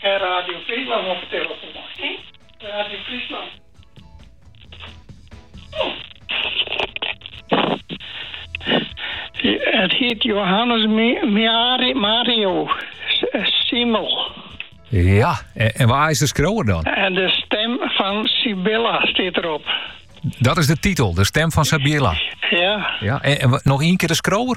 En Radio Fryslân op 'e telefoan, hè? Radio Fryslân. Hy hjit Johannes Mario Simmel. Ja, en, wa is de skriuwer dan? En de stem van Sibilla stiet derop. Dat is de titel, de stem van Sibilla. Ja. ja en, noch ien kear de skriuwer?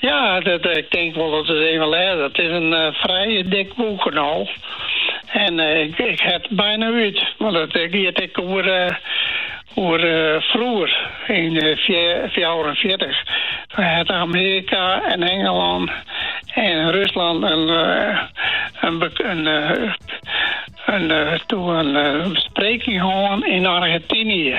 Ja, dat, ik tink wol dat it even lês. It is in frij dik boek no en ik ha it byna út, want it giet ek oer oer froeger yn fjouwerenfjirtich, wêr't Amearika en Engelân en Ruslân in bespreking hân yn Argentynje.